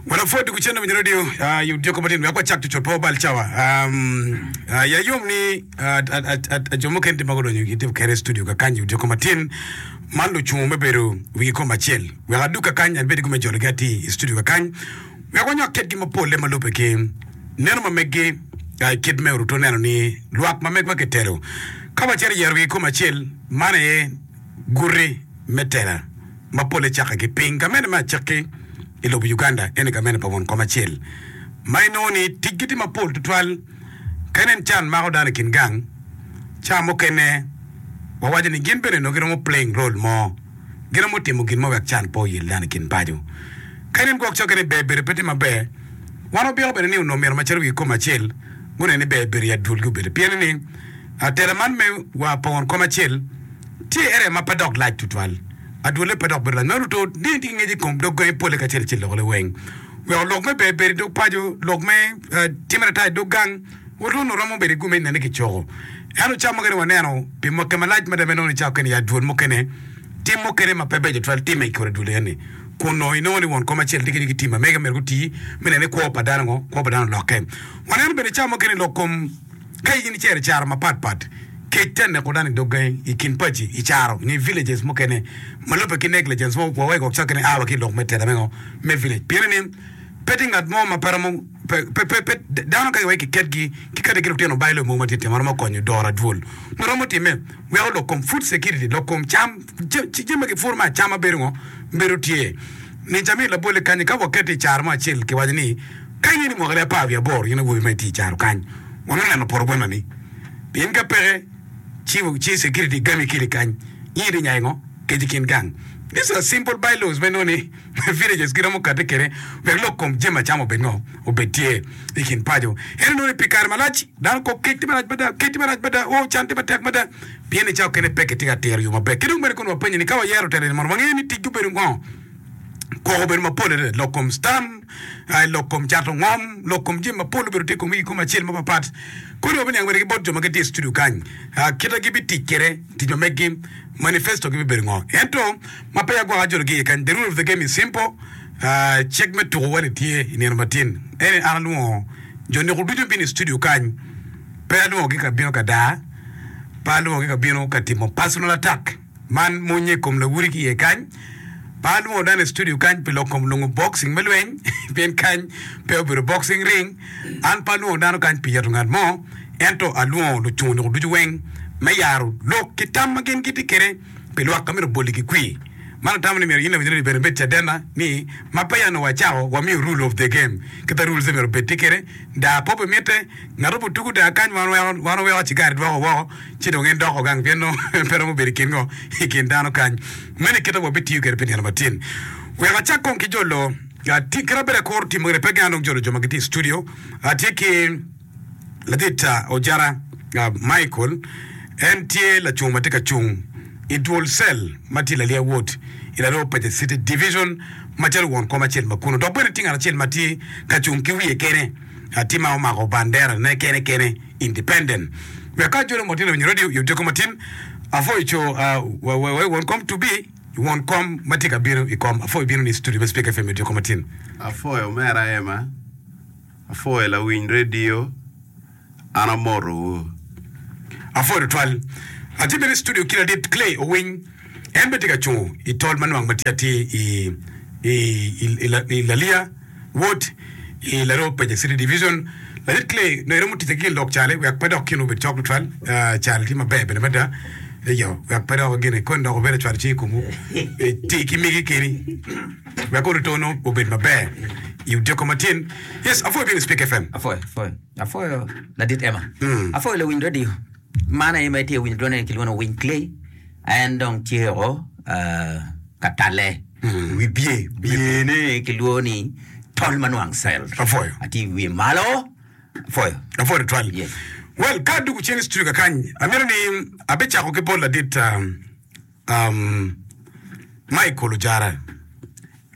Wana pwod dye gucendo winyo radio ah, yub dyeko matino wek wacak cucut pa obal cawa. Um, ah, ya yom ni ah, ah, ah, ah, ah, jo mukene tye ma gudonyo gitye kere i studio kakany yub dyeko matin man lucungo me bedo wigi kom acel. Wek adug kakany an bedi gume jologi ati i studio kakany wek wanywak kitgi mapolle ma lube ki neno ma meggi ah, i kit me oruto neno ni lwak ma megwa kitelo ka wacito yero wigi kom acel man aye guti me tela. ma pole cakke ki piny. Gamente me acakki i lobo Uganda eni gamente pa won kom acel ma inongo ni ticgi tye mapol tutwal. Ka inen can mako dano i kin gang, ca mukene wawaco ni gin bene onongo giromo playing role mo, giromo timo gin mo wek can pe oyel dano i kin paco. Ka inen gwok cokke ni ber bedo pe tye maber, wan wabiko bene ni onongo myero macalo wi kom acel gunen ni ber bedo i adwolgi obedo. Pien ni tela man me wa pa won kom acel, Tye ere ma pe dok lac tutwal, adwolle pe dok bedo lac ma ruto ni tye ki ngec i kom dog gangi polle kacel ki lokone weng. Weko lok me berberi i dog paco, lok me timme ata i dog gang, Orlando romo bedo i gume i nene ki coko. Ento cawa mukene waneno pi mwaki malac mada ma inongo ni cawa kene ya adwol mukene, tim mukene ma pe beco tutwal timme i kor adwol eni, kun onongo inongo ni won kom acel tye kenyo ki tim ma mege myero guti me neno ni kwo pa dano ngo, kwo pa dano olokke. Waneno bene cawa mukene lok kom. Ka in icero i caro mapat pat, kec te neko dano i dog gangi i kin paci i caro nge villages mukene ma lubbe ki negligence mo okwowa i kok cake ni awa ki i lok me teta me ngo me village pien ni pe tye ngat mo ma pe romo pe pe pe dano ka iwegi ki ket gi ki kadi ki lutino bailo mogo ma titino ma romo konyo doro adwol ma romo time weko lok kom food security lok kom cam ci jami ma ki puro me acama bedo ngo bedo tye ni jami labole kanyi ka waketo i caro mo acel ki waco ni Kany en i mwaka me apar wiye aboro in awobi ma itye i caro kany wano neno poto bwena ni pien ka peke ci ci security gami kili kany in iti nyayo ngo kec i kin gang these are simple by laws ma inongo ni villages kit amo kati kede wek lok kom jami acama obed ngo obed tye i kin paco ento inongo ni pi kare malac dano kok kec tye marac mada kec tye marac mada oo can tye matek mada pien ni cawa kene peki tye ka tiro yo maber kidong bene kono wapenyi ni ka wayero telo eni mondo wange ni tic gi obedo ngo. Koko obedo mapol adada lok kom stam, lok kom cato ngom, lok kom jami mapol obedo tye kom i kom acel mapapat. Kodi wabiniang bene ki bot jo ma gitye i studio kany, kita gibitic kwede, tic ma megi, manifesto gi bibedo ngo. Ento ma peya gwaka jolo gi iye kany, the rule of the game is simple, cik me tuko wali tye i nino matin. Ene an alwongo jo neko ducu bino i studio kany, pe alwongo gi ka bino ka daa, pe alwongo gi ka bino ka timo personal attack. Man mony i kom lawudi ki iye kany. Pe alwongo dano i studio kany pi lok kom nongo boxing me lweny, pien kany pe obedo boxing ring. An pe alwongo dano kany pi yeto ngat mo, ento alwongo lucung onongo ducu weng me yaro lok ki tam ma gin gitye kwede pi lwak ka myero obol-li ki kwir. Man atamo ni myero in lawinyina ibed ibed cadena ni ma peya onongo wacako wamiyo rule of the game kit ma rules-e myero obed tye kwede, daa kop bimitte. Ngat obuto tugo teng akany man wan oweko cigari dwoko woko ci dong en doko gang pien nongo pe romo bedo i kin ngo i kin dano kany. Meno i kite ma wabitiyo kwede pi nino matin. Wek acak kong ki jo loo. Kit ma bedo akuru timo gire pe gin anong jolo jo ma gitye i studio. Atye ki ladit Ojara Michael en tye lacung ma tye ka cung i dwol cell ma tye i Lalia Ward i Laroo Pace City Division macalo won kom acel ma kunu dok bene tye ngat acel ma tye ka cung ki wiye kene. latin ma omako bandera ne kene kene independent wek ka jolo motino winyo radio yom tyeko matin afoy co uh, wa wa won kom to be won kom ma tye ka bino i kom afoy bino ni studio me speak fm yom tyeko matin afoy omera ema afoy lawiny radio an amotowu. Afoy tutwal. Atye bene i studio ki ladit Clay Owiny. En bene tye ka cungo i tol ma nwang ma tye atir i La Liga, Wod, i Laroo Paja City Division. Latit Clay nongo eromo ticce ki gin lok cale wek pe dok kinwa obed cok tutwal. Cal tye maber bene mada eyo wek pe dok gin ikoni dok wubed acwalo cing i komwu. Ti ki migi keni wek ori to nongo obed maber i odyeko ma tyen. Yes, apwoyo bino i Spik FM. Apwoyo, apwoyo, apwoyo ladit Emma. Apwoyo lawiny radio. Man aye ma itye ka winyo dwone ni kilwongo ni Wing Clay, en dong tye o ah, ka talle i wi bye. Byene kilwongo ni tol ma nwang cell. Apwoyo. Atye i wiye malo. Apwoyo. Apwoyo tutwal. Yes. Well, ka adwogo cen i studio kakany, amito ni abicako ki bot ladit um, um, Michael Ojara.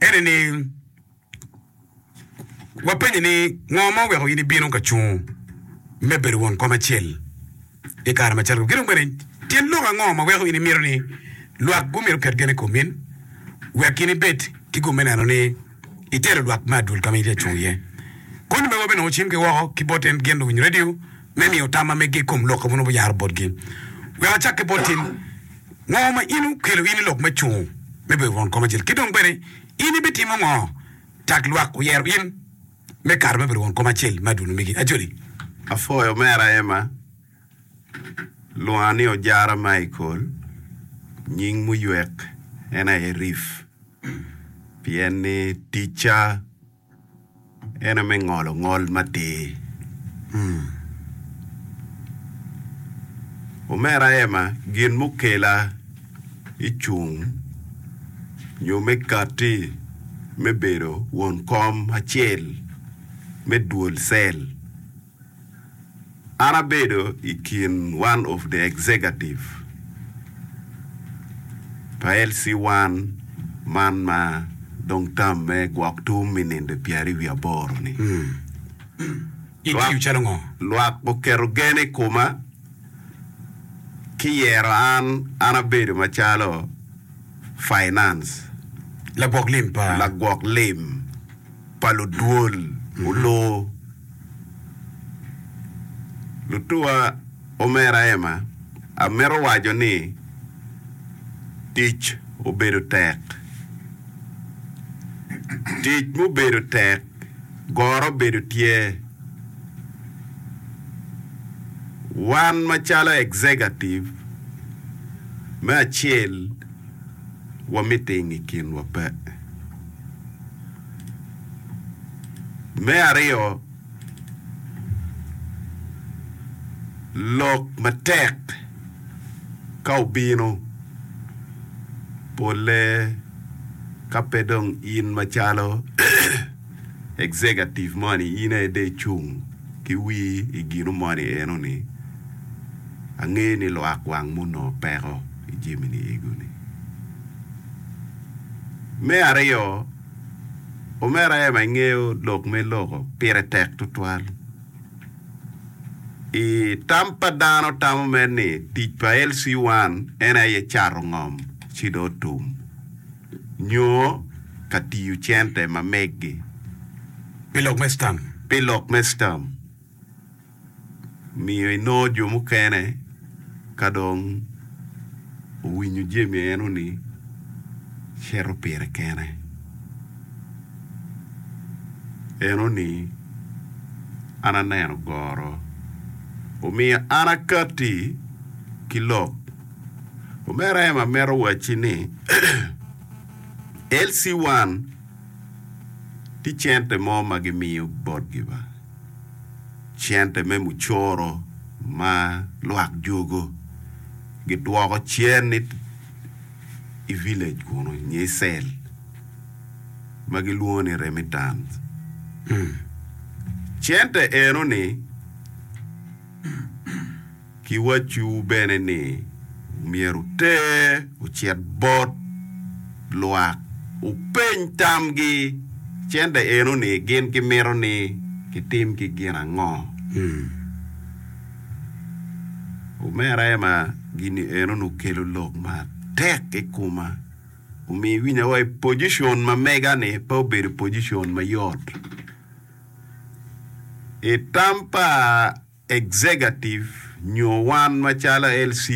Ene ni, Wapenyi ni, ngo ma oweko in ibino ka cungo me bedo won kom acel i kare macalo kome? Kidong bene tyen lok ango ma weko in imito ni lwak gumito ket gen i komi in wek in ibed ki gum me neno ni itelo lwak me adwol ka ma in itye ka cung iye? Koni mego bene nongo ocim ki woko ki bot en gin luwiny radio me miyo tam ma mege i kom lok ma nongo wuyaro botgi. Wek acak ki bot in, ngo ma in okelo in i lok me cungo me bedo won kom acel? Kidong bene. In ibitimo ngo? Tag lwak oyero in me kato me bedo won kom acel me adunu megi. Ajoli. Apwoyo omera Emma. Lwonga ni Ojara Michael, nying muywek en aye Riff, pien ni ticca. En aye me ngolo ngol matir. Omera Emma, gin mukela i cung nyo me katti me bedo won kom acel me duol cell An abedo i kin one of the executive pa LC one man ma dong term me gwok tum i ninde pyeri wiye aboro ni. Itiyo calo ngo? Lwak oketo gen i kuma ki yero an, an abedo macalo finance. Lagwok lim pa? Lagwok lim. pa ludwol olor. Lutuwa omera Emma, amito waco ni tic obedo tek. Tic mubedo tek goro bedo tye. Wan macalo executive me acel, wamite i nge kinwa pe. Me aryo, lok matek ka obino, polle ka pe dong in macalo executive moni in aye dong icung ki wir i gino moni eno ni, angeyo ni lwak wang mo onongo peko. i jami-ni ego-ni. Me aryo, omera Emma ingeyo lok me loko pire tek tutwal. I tam pa dano tamo mere ni tic pa LC1 en aye cato ngom ci dong otum nyo ka tiyo cente ma meggi pi lok me sperm. miyo inongo jo mukene ka dong owinyo jami eno-ni cito pire kene. Eno-ni an aneno goro. Omiyo an akatti ki lok. Omera Emma mito wacci ni LC1 tye cente mo ma gimiyo botgi ba. cente me mucoro ma lwak jugo gidwoko cen ni i village kunu nyo i cell ma gilwongo ni remittance. Cente eno ni Kiwacciwu bene ni myero wuter ocit bot lwak, wupeny tamgi cente eno ni gin gimito ni kitimgi gin ango. Omera Emma, gini eno ni okelo lok matek i koma. Omiyo iwinya wa i pojicon ma mega ni pe obedo pojicon mayot. I tam pa. Executive nyo wan macalo LC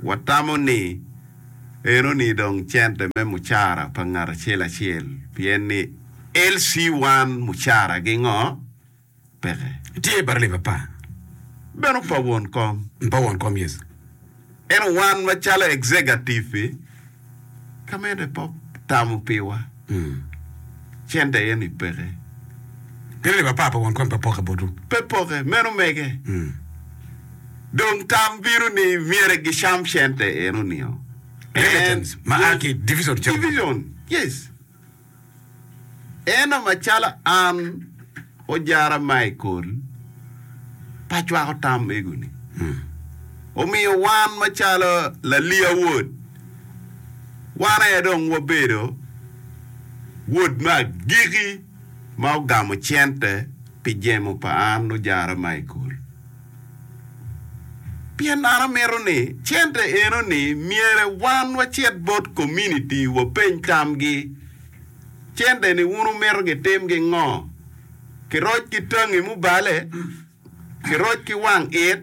watamo ni enoni dong cente me mucara pa ngat acel acel pien ni LC wan mucara gi ngo peke. Tye baralim apa? Beno pa won kom. Pa won kom yes. Ento wan macalo executive-fi, ka mene pe otamo piwa, cente eni peke. Meno leb apar pa wankwany pe poke botwu? Pe poke, meno mege. Dong tam bino ni myero gicam cente eno nio. Inheritance ma a ki division calo magi. Division, yes. Eno macalo an ojara Michael pa cwako tam mego-ni, omiyo wan macalo Lalia Wod, wan aye dong wabedo wod me agiki ma ogamo cente pi jemo pa an ojara Michael. Pien an amito ni cente eno ni myere wan wacit bot kominiti wapeny tamgi. Cente ni wun wumito gitim gi ngo? Ki roc ki tangi mubale? Ki roc ki wang it?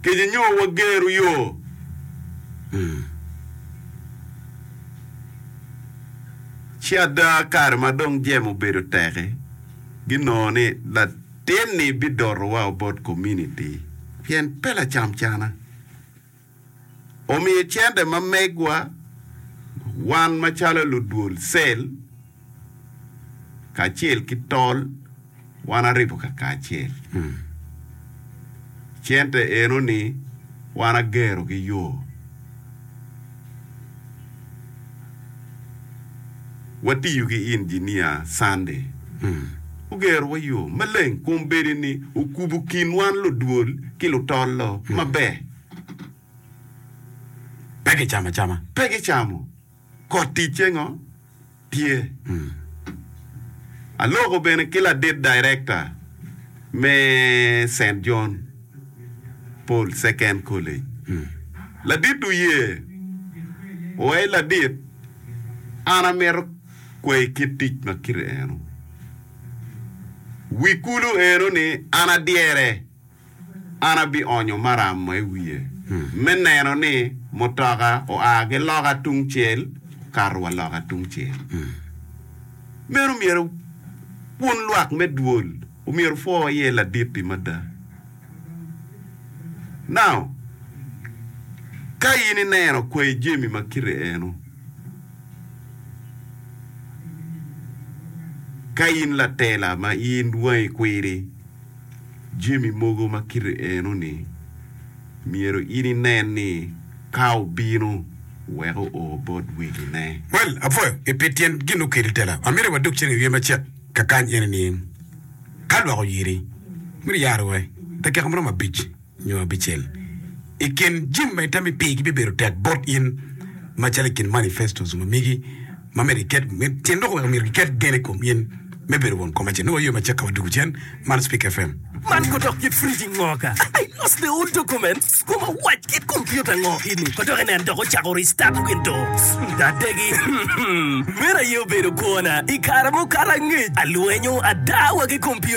Kico nyo wageru yo? Ci ada kare ma dong jemo obedo teki ginongo ni Tyen-ni bidotowa bot kominiti pien pe lacamcana omiyo cente ma megwa wan macalo ludwol cell kacel ki tol wan aribo kakacel. Cente eno ni wan agerogi yoo. Watiyo ki injinia Sunday ogerowa yo maleng kun bedi ni okubo kin wan ludwol ki lutol-lo maber. Pe gicamo acama. Pe gicamo. Kot ticce ngo? tye. Aloko bene ki ladit director me Saint John Paul Second College. Ladit oye wa i ladit an amito kwayi kit tic ma kite eno. Wi kulu eno ni an adyere. an abionyo maram ma i wiye me neno ni mutoka oa ki loka tungcel kato wa loka tungcel. Meno omyero wun lwak me dwol omyero wupwo iye ladit-ti mada. Now, ka in ineno kwayi jami ma kite eno, ka in latela ma in wangi kwidi, jami mogo ma kite eno-ni, myero in inen ni ka obino, wek oo bot wegine. Well, apwoyo i pi tyen gin okelo i tela. Amito wadog cen i wiye macek kakany ene ni, Ka lwak oyiri, myero iyar owe, dakika maromo abic. nyo abicel. I kin jami ma itami pigi bibedo tek bot in, macalo i kin manifesto zoom amigi, ma myero giket, tyen loko weko myero giket gen i kom in me bedo won kom acel. Nongo waywe macakka wa dugu cen man Speak FM. Man ko dok kit friji ngo ka I lost the old document kom awac kit computer ngo ini ko dok inen dok ocako restart windows adegi meno aye obedo kwona I kare mukato angec alwenyo ada wa ki computer